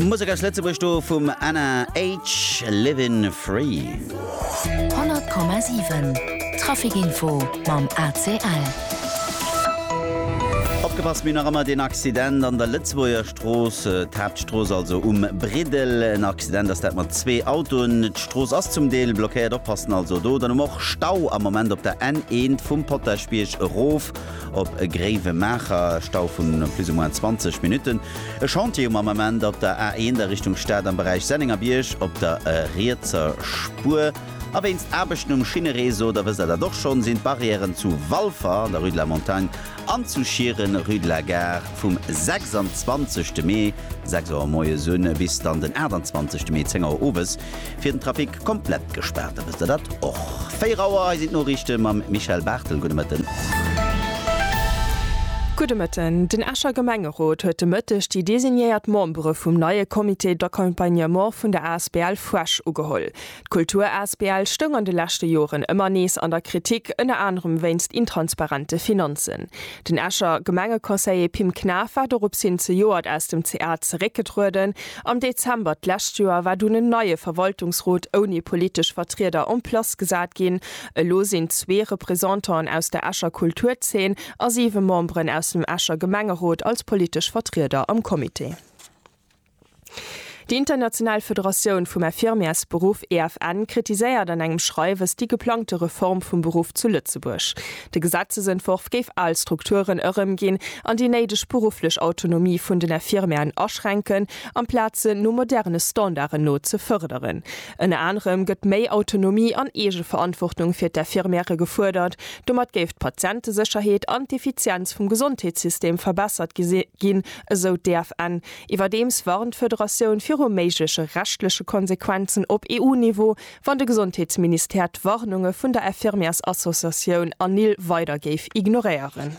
Musek aus Lëtzebuerg do vum Anna H, Livin Free. 100,7 Traficinfo mam ACL. Opgepasst, mir hunn nach ëmmer deen Accident an der Lëtzebuerger Strooss, d'Haaptstrooss also, um Briddel. En Accident ass dat mat zwee Autoen. D'Strooss ass zum Deel blockéiert, oppassen also do. Dann hu mer och Stau am Moment op der N1 vum Potaschbierg erof op Gréiwemaacher, e Stau vu plus ou moins 20 Minutten. E Chantier um Ament op der A1 a Richtung Stad am Beräich Sennengerbierg op der rietser Spuer. A wéinst Aarbechten um Schinnereseau, da wësst der dat och schonn, sinn d'Barrièren zu Walfer an der Rue de la Montagne an zu Schieren, Rue de la Gare, vum 26 Mee 6 Auer moies un bis dann den 28 Mee 10 Auer owes fir den Trafic komplett gespaart, da wësst der dat och. 4 Auer, hei sinn d'Noriichte mam Michèle Barthel. Gudde Mëtten. Gudde Mëtten. Den Escher Gemengerot huet de Mëtteg déi designéiert Membere vum neie Comité d'accompagnement vun der asbl Fresh ugeholl. D'Kultur asbl stoung an de leschte Joren ëmmer nees an der Kritik, ënner anerem wéinst intransparente Finanzen. Den Escher Gemengeconseiller Pim Knaff war doropshin zejoert aus dem CA zeréckgetrueden, Am Dezember d'lescht Joer war dunn en neie Verwaltungsrot ouni politesch Vertrieder en place gesat ginn. Elo sinn zwee Représentanten aus der Escher Kulturzeen a siwe Memberen aus dem Escher Gemengerot als politesch Vertrieder am Comité. Déi international Federatioun vum Infirmièresberuff, EFN, kritiséiert an engem Schreiwes déi geplangte Reform vum Beruff zu Lëtzebuerg. De Gesetzesentworf géif al Strukturen erëmginn an déi néideg berufflech Autonomie vun den Infirmièren aschränken, amplaz se no moderne Standarden no ze fërderen. Ënner anerem gëtt méi Autonomie an Eegeverantwortung fir d'Infirmièrë gefuerdert. Domat géif d'Patientesécherheet an d'Effizienz vum Gesondheetssystem verbessert ginn, esou d'EFN. Iwwerdeems warnt d'Federatioun viru méigleche rechtleche Konsequenzen op EU-Niveau, Wann de Gesondheetsministère d'Warnunge vun der Infirmièrsassociatioun ANIL weider géif ignoréieren.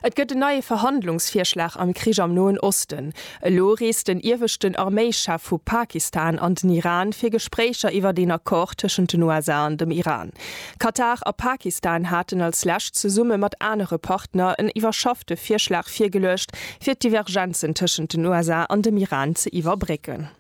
Et gëtt en neie Verhandlungsvirschlag am Krich am Noen Osten. Elo reest den ieweschten Arméischef vu Pakistan an den Iran fir Gespréicher iwwert een Accord tëschent den USA an dem Iran. Katar a Pakistan haten als lescht zesumme mat anere Partner en iwwerschaffte Virschlag virgeluecht, fir d'Divergenzen tëschent den USA an dem Iran ze iwwerbrécken.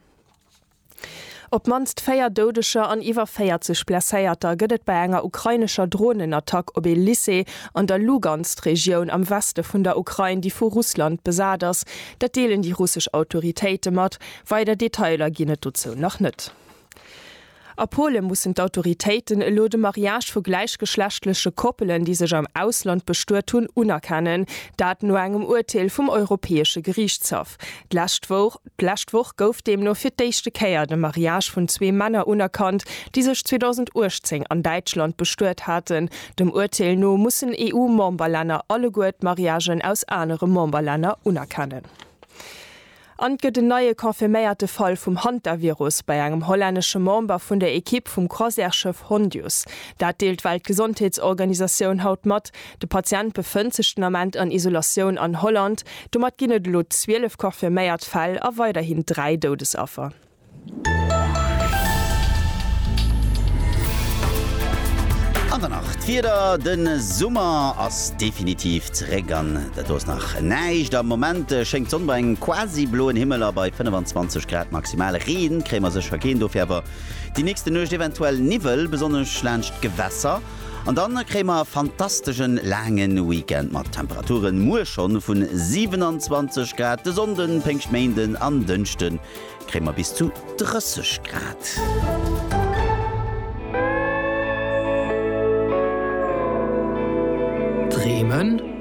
Op d'mannst 4 Doudeger an iwwer 40 Blesséierter gëtt et bei enger ukrainescher Dronenattack op ee Lycée an der Lugansk-Regioun am Weste vun der Ukrain, déi vu Russland besat ass. Dat deelen déi russesch Autoritéite mat. Weider Detailer ginn et dozou nach net. A Pole mussen d'Autoritéiten elo de Mariage vu gläichgeschlechtleche Koppelen, déi sech am Ausland bestuet hunn, unerkennen. Dat no engem Urteel vum Europäesche Geriichtshaff d'lescht Woch. D'lescht Woch gouf deemno fir d'éischte Kéier de Mariage vun zwee Männer unerkannt, déi sech 2018 an Däitschland bestuet haten. Dem Urteel no mussen EU-Memberlänner alleguer d'Mariagen aus anere Memberlänner unerkennen. An et gëtt en neie confirméierte Fall vum Hantavirus bei engem hollännesche Member vun der Ekipp vum Croisièreschëff Hondius. Dat deelt d'Weltgesondheetsorganisatioun haut mat. De Patient befënnt sech den Ament an Isolatioun an Holland. Domat ginn et elo 12 confirméiert Fäll a weiderhin 3 Doudesaffer. An dann nach d'Wieder, De Summer ass definitiv zeréck an dat do ass nach näischt. Am Moment schéngt d'Sonn bei engem quasi bloen Himmel a bei 25 Grad maximal. Reen kréie mer sécher keen, dofir awer déi nächste Nuecht eventuell Niwwel, besonnesch laanscht d'Gewässer. An dann kréie mer e fantasteschen laangen Weekend mat Temperaturen muer schonn vun 27 Grad. De Sonnden, Péngschtméinden an Dënschden kréie mer bis zu 30 Grad. Bremen.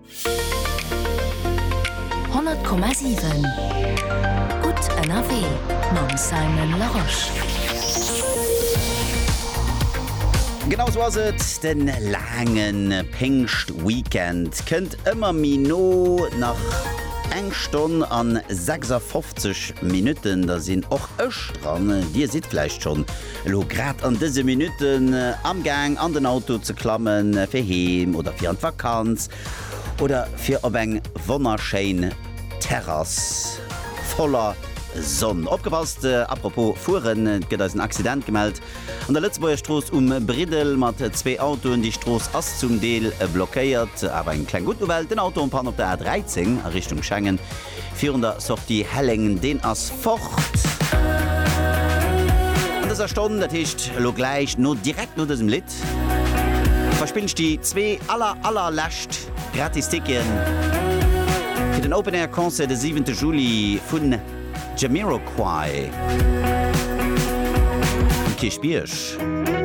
100,7 Gutt ënnerwee mam Simon Larosche. Genau esou ass et, de laange Péngschtweekend kënnt ëmmer méi no. Nach eng Stonn a 56 Minutten, da sinn och ech dran. Dir sidd vläicht schonn Elo grad an dëse Minutten amgaang an den Auto ze klammen fir heem oder fir an d'Vakanz oder fir op eng wonnerschéin Terrass voller Sonn. Opgepasst, apropos fueren, et gëtt eis en Accident gemellt an der Lëtzebuerger Strooss um Briddel mat zwee Autoen. Déi Strooss ass zum Deel blockéiert, awer eng kleng gutt Nouvelle, den Auto en panne op der A 13 a Richtung Schengen Virun der Sortie Helleng, deen ass fort. An dëser Stonn, dat heescht elo gläich no, direkt no dësem Lidd, verspillen ech déi zwee aller, aller lescht gratis Ticketen fir den Open Air Concert de siwente Juli vun Jamiroquai um Kierchbierg.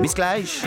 Bis gläich.